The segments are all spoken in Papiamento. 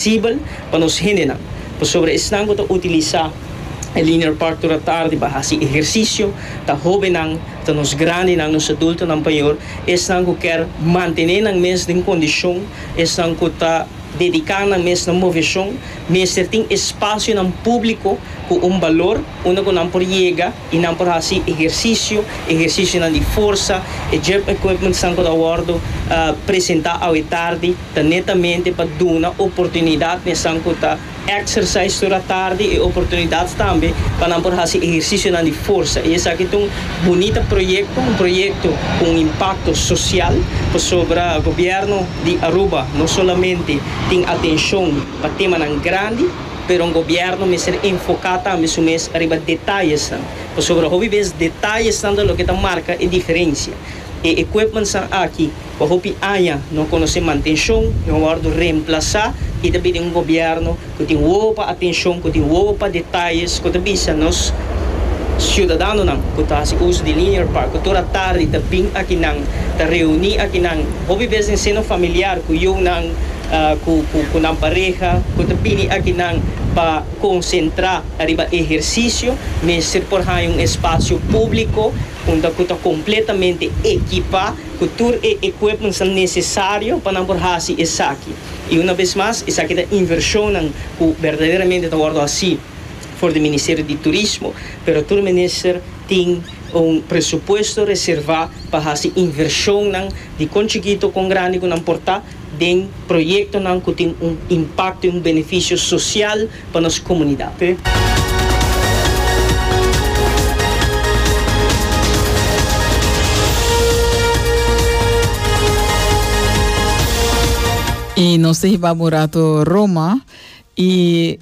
Sibel pa nos hendenan, pasobra esnan ku ta utilisá e linear park ora tardi pa hasi ehersisio, ta hóbennan, ta nos grandinan, nos adultonan payor, esnan ku kèr mantené nan mes den kondishon, esnan ku ta dediká nan mes na moveshon, mester tin espasionan públiko ku un balor unda ku nan por yega. I nan por hasi ehersisio, ehersisionan di forsa. E gym equipmentsnan ku ta wòrdu presentá awe tardi ta netamente pa duna oportunidat nesnan ku ta exercise ora tardi e oportunidat tambe pa nan por hasi ehersisionan di forsa. I esaki ta un bunita proyekto, un proyekto ku un impakto sosial pasobra gobièrnu di Aruba no solamente tin atenshon pa temanan grandi, Pero un gobièrnu mester enfoká tambe su mes riba detayesnan, pasobra hopi bes detayesnan ta loke ta marka e diferensia. E equipmentsnan aki pa hopi aña no a konosé mantenshon, no a wòrdu remplasá i ta pidi un gobièrnu ku tin wowopa atenshon, ku tin wowopa detayes ku ta bisa nos siudadanonan ku ta hasi uso di Linear Park ku tur a tardi ta bin akinan, ta reuní akinan, hopi bes den seno familiar ku yunan. cu nan pareha cu ta bini aki nan pa concentra ariba ehercicio mester por haya un espacio publico unda cu ta completamente ekipa cu tur e equipmentsnan necesario pa nan por haci esaki y una bes mas esaki ta inversionnan cu berdaderamente ta wordo haci for di Ministerio di Turismo pero tur minister tin un presupuesto reserva pa haci inversionnan di con chikito con grandi cu nan por ta den proyectonan cu tin un impacto y un beneficio social pa nos comunidad. Y nos ta hiba bo un rato Roma y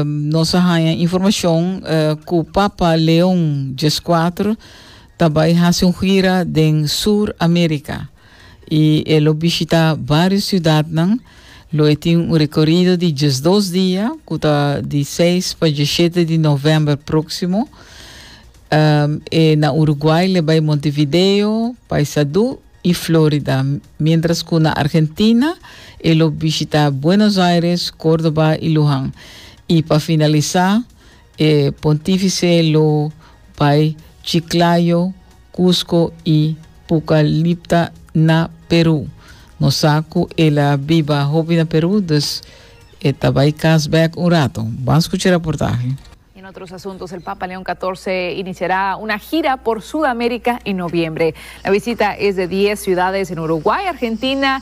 nos a haña informacion cu Papa Leon Xvi ta bay haci un gira den Sur America. i e lo bishitá vários siudatnan. Lo e tin un rekorido di diesdos dia ku ta di seis pa diesshete di novèmber próksimo. E na Uruguay le bai Montevideo, Paysandú i Flórida, miéntras ku na Argentina e lo bishitá Buenos Aires, Kórdoba i Luján. I pa finalisá. E Pontífice lo bai Chiclayo, Cusco i Pucallipta na Peru. Nos sa cu el a biba hopi na Peru, dus e ta bai cas bek un rato. Ban scucha e raportahe. En otros asuntos, el Papa Leon Catorce iniciará una gira por Sudamérica en noviembre. La visita es de dies ciudades en Uruguay, Argentina